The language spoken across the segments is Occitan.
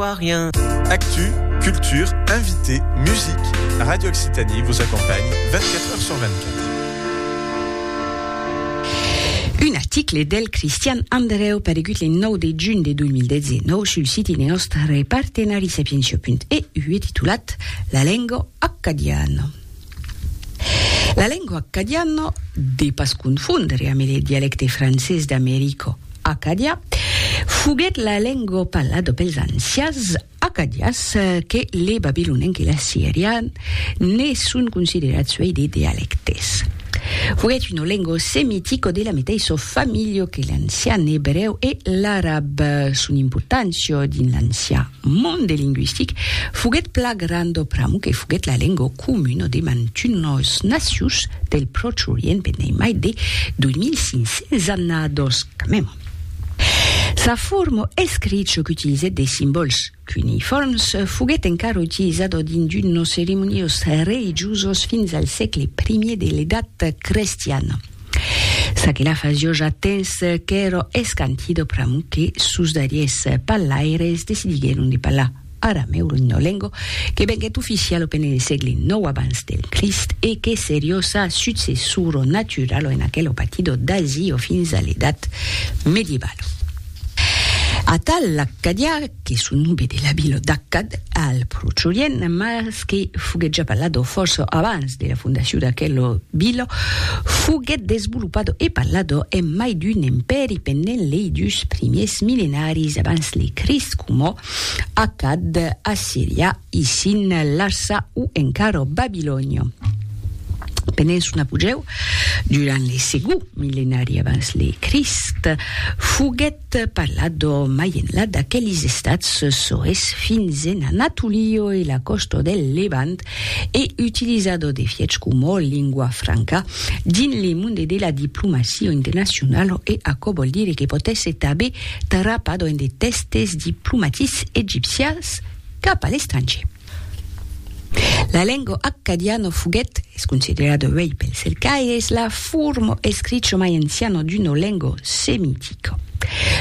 Rien. Actu, culture, invités, musique, Radio Occitanie vous accompagne 24 heures sur 24. Un article del Christian Andreu paregut le 9 de juny de 2019 sul siti de nòstre partenari sapientia.eu e titulat La lengo accadiana. La lengua accadiana, de pas confondre ambe le dialecte francés d'America, Acadia, foguèt la lengua parlada pels ancians acadians que le babilonenc e l'assirian ne son considerats uèi de dialectes. Foguèt una lengua semitica de la meteissa familha que l'ancian ebrèu e l'arab. Son importància dins l'ancian monde lingüistic foguèt pla grandor pr'amor que foguèt la lengua comuna de mantunos nacius del Pròche Orient pendent mai de 2500 annadós quand même. Sa forma escricha qu'utilizèt de simbòls cuneiforms foguèt encara utilizada dins d'unos ceremoniós religiusos fins al sègle primièr de l'Edat crestiana. Ça que la fas jo ja tens qu'èro escantido pr'amor que sos darriers pallaires decidiguèron de pallar aramèu lo ninolengo que venguèt oficial au penene sègle nòu abans del Crist e que serió sa successuro naturalo en aquel opatido d'Asio fins a l'edat medievalo. Atal l'accadiá que son nobé de la vila d'Akkad, al Pròche Orient, mas que foguèt ja parlado fòrça abans de la fondacion d'aquela vila, foguèt desvolopado e parlado en mai d'un empèri pendent lei dus primièrs milenaris abans le Crist coma Akkad, Assiria, Isin, Larsa o encara Babilònia. Pendent son apogèu, durant le segond milenari abans le Crist, foguèt T'è parlat do Mayenla d'aquelis estats soes fins en Anatolio e la còsta del Levant e utilizar do defièch coma lingua franca dins le monde de la diplomacia internacionala e aquò vòl dire que pòt èsser tanben trapat en de tèstes diplomatics egipcians cap a l'estrangier. La lenga accadiana foguèt, es considerada uèi pels cercaires, la forma escricha mai anciana d'una lenga semitica.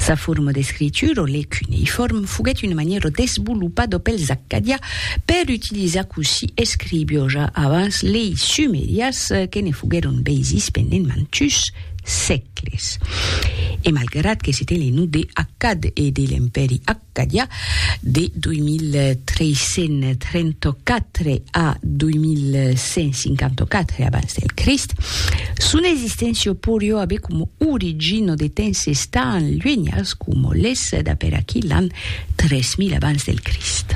Sa forma d'escritura, le cuneiform, foguèt una manièra desvolopada pels accadià per utilizar cossí escrivió ja avans lei sumerias que ne foguèron beisis pendent mantus sègles. E malgrat que se ten le nom de Accad e de l'Empèri Accad, Qu'aviá de 2334 a 2154 abans del Crist, son existéncia porió aver coma origina de temps estant luenhas coma l'es d'aper aquí l'an 3000 abans del Crist.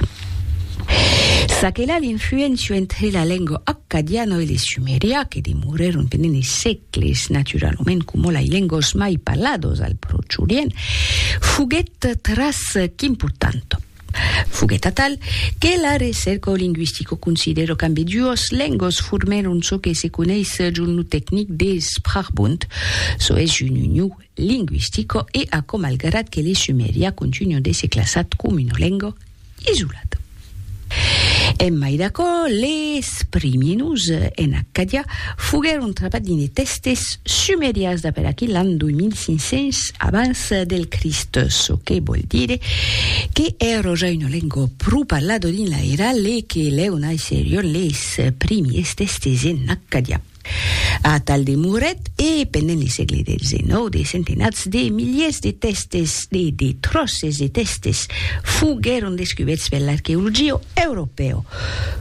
Çaquelà l'influéncia entre la lenga accadiana e le sumerià que demorèron tenent-ne qu'es naturalament coma lei lengos mai parlados al Pròche Orient, foguèt tras qu'important. Foguèt atal que la recerca lingüistica considèra qu'ambeduas lengos formèron çò que se coneis jun lo tecnic de Sprachbund, çò es jun uniu lingüistica e aquò malgrat que le sumerià continua d'èsser classat coma una lenga isolat. En mai d'aquò, les primièrs en Accadia foguèron trapats dins de tèstes sumerians d'a per aquí l'an 2500 abans del Crist, çò que vòl dire que èra ja una lenga pro parlada dins l'airal e que lèu naisserion les primièrs tèstes en Accadia. Atal demorèt e, pendent le sègle xix, de centenats de miliers de tèstes e de tròces de tèstes foguèron descubèrts per l'arqueologia europèo.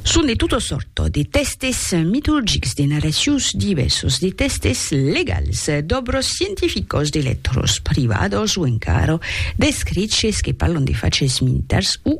Son de tota sòrta, de tèstes mitologics, de narracions divèrsas, de tèstes legals, d'òbras scientificas, de lètras privadas o encara d'escriches que parlan de faches militars o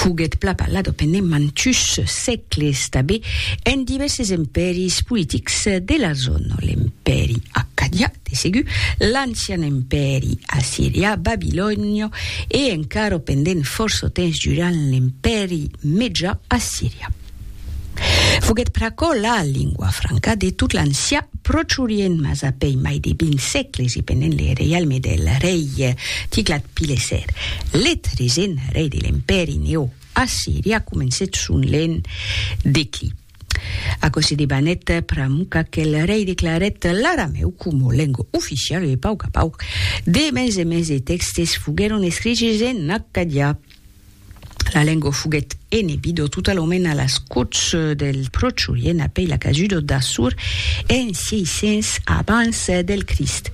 Foguèt pla parlada pendent mantuns sègles tanben en divèrses empèris politics de la zòna, l'empèri accadià de segur, l'ancian empèri assirià, babilonian e encara pendent fòrça temps durant l'empèri mejà assirià. Foguèt pr'aquò la lingua franca de tot l'ancià Pròche Orient, mas a pei mai de 20 sègles e pendent le reialme del rei Tiglat-Pileser, le tresent rei de l'Empèri Neoassirià, comencèt son lent declin. Aquò se debanèt pr'amor qu'aquel rei declarèt l'aramèu coma lengua oficiala e pauc a pauc de mens e mens de tèxtes foguèron escriches en accadià. La lengua foguèt enebidor tota la mena a las còts del Prochurien apèi la casuda d'Assur en 600 abans del Crist.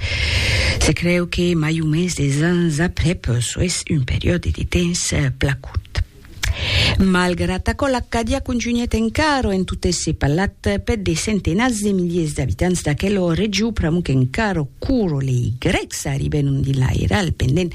Se creu que mai o mens des ans aprèp, soes un periòde de temps pla curt. Malgrat aquò, l'Acadia contunhèt encara en tot èsser parlat per de centenats de miliers d'abitants d'aquela region pr'amor qu'encara quora lei grècs arribèron dins l'airal pendent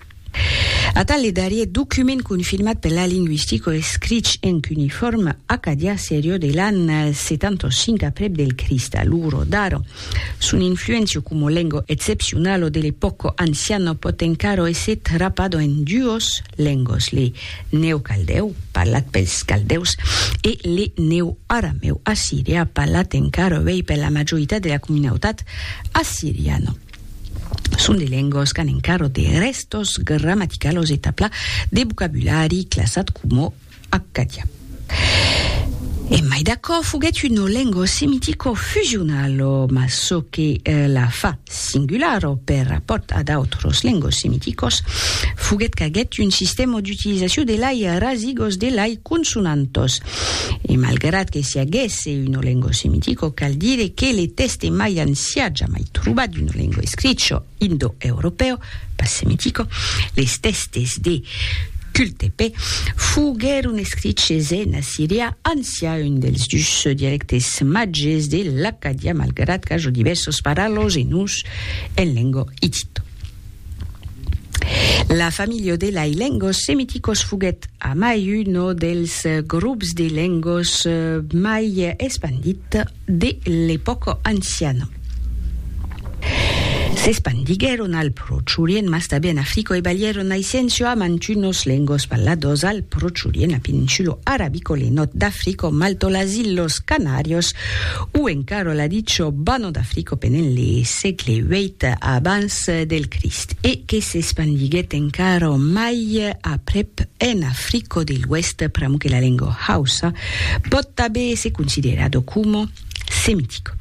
Atal le darrier document confirmat per la lingüistico escrich en cuneiforme acadià serió de l'an 75 aprèp del Crist, lugro daro son influencio como lengo excepcionalo de l'epòco anciano pòt encaro èsser trapado en duos lengos, le neocaldèu, parlat pels caldèus, e le neoaramèu assirià, parlat encaro avei per la majoritat de la comunautat assiriana. Son de lengas qu'an encara de rèstos grammaticalos e tabla de vocabulari classat coma accadià. E mai d'aquò, foguèt una lenga semitico-fusionala, mas çò que la fa singulara per rapòrt a d'autras lengas semiticas foguèt qu'aguèt un sistèma d'utilizacion de lai rasigos de lai consonantas. E malgrat que siaguèsse Se un olengo semitico cal dire que le tèste mai ancià jamai trobat d'un olengo escricho indoeuropèu, pas semitico, les tèstes de Kültepe, foguèron escriches en assirià ancià, un dels dus dialectes màges de l'accadià, malgrat qu'ajo divèrsos paralòs e noms en lengo hittito. La familha de lai lengos semiticos foguèt amai uno dels grops de lengos mai espandit de l'epòca anciana. S'espandiguèron al Pròche Orient, mas tanben en Africa, e balhèron naissenço a mantunos lengos parlados al Pròche Orient, la Peninsula Arabica, le Nòrd d'Africa, Malta, las Ilhas Canàrias o encara la dicha Banha d'Africa pendent le sègle viii abans Còrs del Crist e que s'espandiguèt encara mai aprèp en Africo de l'Oèst pr'amor que la lenga hausa pòt tanben èsser considerada coma semitica.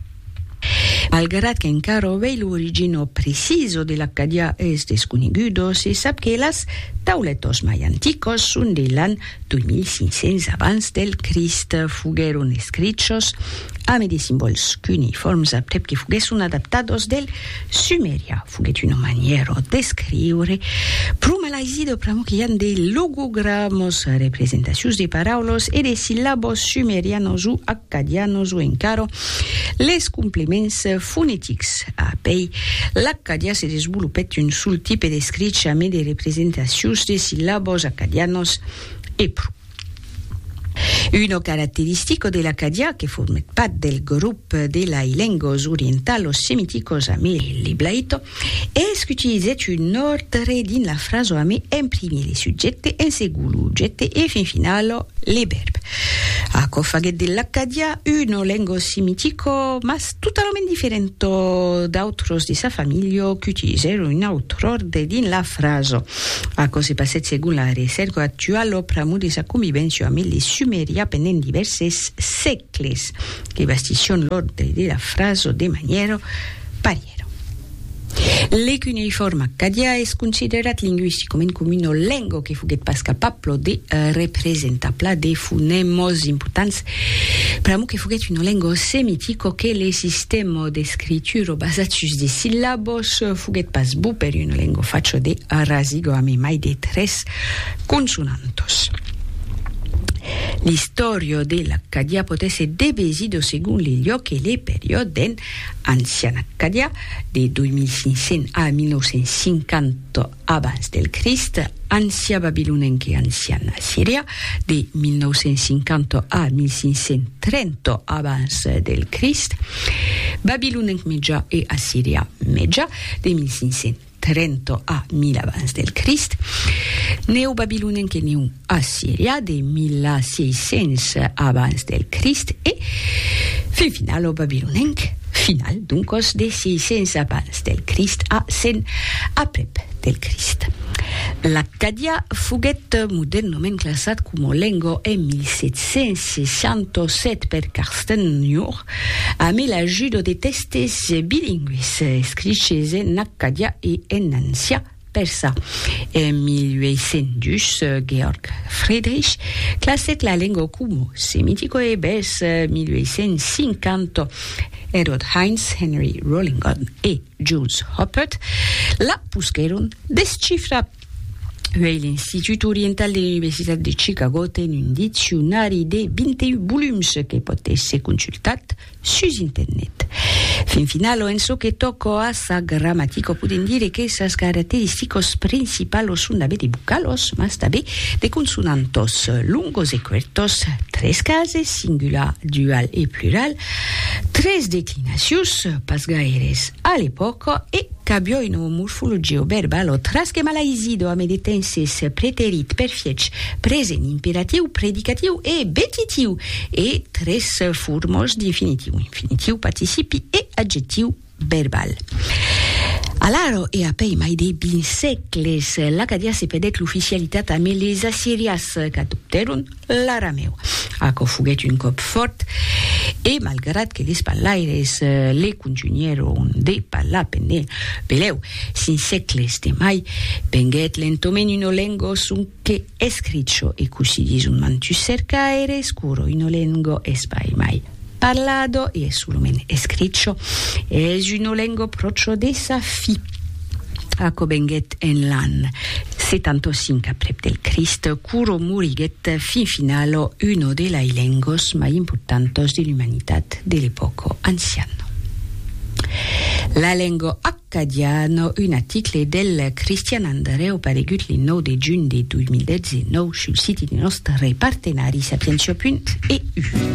Malgrat qu'encara avèi l'origina precisa de l'accadiá es desconeguda, se sap que las tauletas mai anticas son de l'an 2500 abans del Crist, foguèron escrichos ame de simbòls cuneiforms aprèp que foguèsson adaptados del sumerian. Foguèt una manièra d'escriure pro malaisida pr'amor que i an de logogramos, representacions de paraulas e de sillabos sumerianos o Cadianos o encara les complements fonetics. A pei, l'acadià se desvolopèt un sol tipe d'escrich amé de representacions de sillabos acadianos e pro. Una caracteristica de l'acadià que formèt pas del grop de lai lengos orientalos-semiticos amé l'eblaito, Es qu'utilizètz un òrdre dins la frasa ame en primier le subjècte, en segon lo objècte e fin final le vèrb. Aquò faguèt de l'acadià una lenga semitica, mas totalament diferenta d'autras de sa familha qu'utilizèron un autre òrdre dins la frasa. Aquò se passèt segon la recèrca actuala pr'amor de sa convivència ame le sumerià pendent divèrses sègles. Cles que bastisson l'òrdre de la fraso de manièro parièro. Le cuneifòrm accadià es considerat lingüisticament coma una lengo que foguèt pas capablo de representar pla de fonèmos importants, pr'amor que foguèt una lengo semitico que le sistèmo d'escrituro basat sus de sillabos foguèt pas bou per una lengo facho de rasigo amé mai de tres consonantos. L'istòria de l'Accadiá pòt èsser devesida segon le luòc e le periòde den Ancian Accadiá, de 2500 a 1950 abans del Crist, Ancià Babilonenc e Ancian Assirià, de 1950 a 1530 abans del Crist, Babilonenc Mejà e Assirià Mejà, de 1500. Trento a mil abans del Crist, Neobabilonien que Neu Assiria de 1600 abans del Crist e fin final o babilonenc final doncos de 600 abans del Crist a 100 aprèp del Crist. L'accadià foguèt modernament classat coma lenga en 1767 per Carsten Jung, Ame l'ajudo de tèstes bilingües escriches en accadià e en ancià persa. En 1802, Georg Friedrich classèt la lengua coma semitico e vers 1850, Herold Heinz, Henry Rollingon e Jules Hoppert la posquèron descifrar. Uèi l'Institut Oriental de l'Universitat de Chicago ten un diccionari de 21 volums que pòt èsser consultat sus internet. Fin finalo, en çò que tòca a sa gramatica, podèm dire que sas caracteristicas principalas son d'aver de vocalos, mas tanben de consonantas, longos e cuertos, tres cases, singular, dual e plural, tres declinacions, pas gaires a l'epòca, e. Qu'avió un o morfologia o verbal o tras que malaisi do ame de temps es preterit per fiech, present imperatiu, predicatiu e betitiu, e tres formos d'infinitiu, infinitiu, participi e adjectiu verbal. Alaro e apèi mai de vint sègles, l'Acadià se pedèc l'oficialitat ame les Assirias, qu'adoptèron L'aramèu, aquò foguèt un còp fòrt, e malgrat que les parlaires le contunhèron de parlar pendent pelèu cinc sègles de mai, venguèt lentament una lengo sonque escricho e cossí dison mantus cercaires, curo una lengo espai mai. Parlado e solament escricho es una lengo procho de sa fi. Aquo venguet en l'an 75 aprep del Crist, quoro moriguet fin finalo uno de lai lengos mai importantos de l'umanitat de l'epòco anciano. La lengo accadiano, un aticle del Cristian Andreu paregut le 9 de junh de 2019 sul siti de nòstre partenari Sapientiapunt EU.